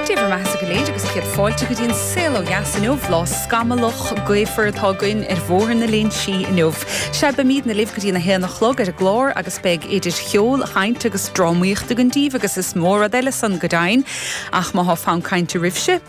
Dé bhur mbeathasa go léir agus céad fáilte go dtí An Saol ó Dheas inniu, lá scamallach, gaofar atá againn ar Bhóthar na Léinsí inniu. Sea, beimidne libh go dtí a haon a chlog ar an gclár agus beidh idir cheol, chaint agus drámaíocht againn daoibh agus is mó rud eile san go deimhin. Ach má tá fonn cainte oraibhse,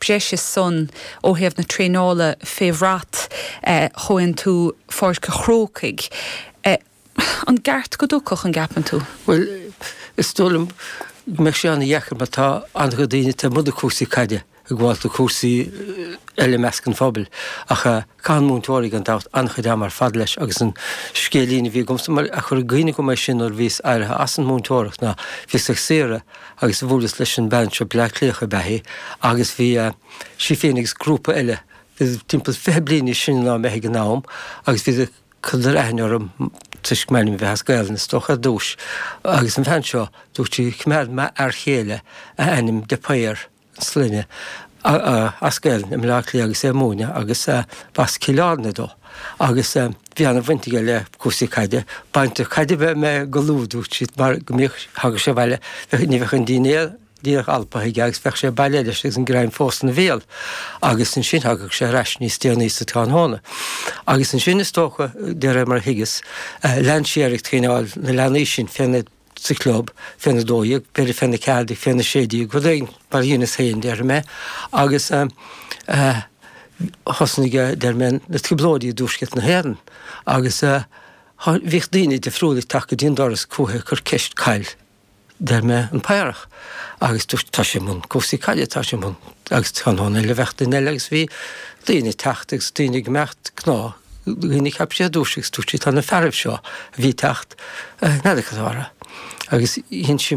breise san ó thaobh na traenála fé bhrat Chomhaontú Pháirc an Chrócaigh. An gceart go dtiocfadh, an gceapann tú? Bhuel, is dóigh liom go mbeadh sé an-deacair mar tá an-chuid daoine taobh amuigh de cúrsaí caide ag gabháilt do chúrsaí eile i measc an phobail ach caitheann múinteoirí gan dabht an-chuid ama ar fad leis agus an scéilín a bhí agamsa mar a chuir i gcuimhne dhom é sin nuair a bhíos éirithe as an múinteoireacht ná bhíos ar saoire agus bhuaileas leis an mbean seo, Bleá Cliathach ab ea í, agus bhí sí féin agus grúpa eile, iad timpeall fiche bliain níos sine ná mé ag an am, agus bhí, chuireadar aithne orm toisc m'ainm a bheith as Gaelainn, is dócha, ar dtúis. Agus an bhean seo, dúirt sí, Choimeád m'fhear chéile a ainm de Paor. sloinne as Gaelainn i mBleá Cliath agus é ag múineadh agus b'as Cill Airne dó agus bhí an-bhaint aige le cúrsaí caide, baintreach caide ab ea mé go luath dúirt sí mar go mbíodh, thagadh sé abhaile, bheadh, ní bheadh an dinnéar díreach alptha aige agus bheadh sé bailithe leis agus an greim fós ina bhéal agus ansin thagadh sé ar ais níos déanaí sa tráthnóna agus ansin is dócha de réir mar a thuigeas, lean sé air ag traenáil na leanaí sin, fé na. sa chlub, fé na dó dhéag, b'fhéidir fé na ceathair déag, fé na sé déag, rud éigin mar a dheineas féin, déarfaidh mé, agus thosnaigh, déarfaidh mé, na trioblóidí i dTuaisceart na hÉireann agus bhíodh daoine difriúla ag teacht go dtí an doras chúithi ag cur ceist ca'il, déarfaidh mé, an Paorach agus dúirt, tá sé i mbun cúrsaí caide, tá sé i mbun agus chan eile a bheadh duine eile agus bhí daoine ag teacht agus daoine ag imeacht, gnáth. dhaoine a cheap sí a dúirt sí agus dúirt sí tá na fearaibh seo a bhí ag teacht a' neadaigh sa bharra agus dhein sí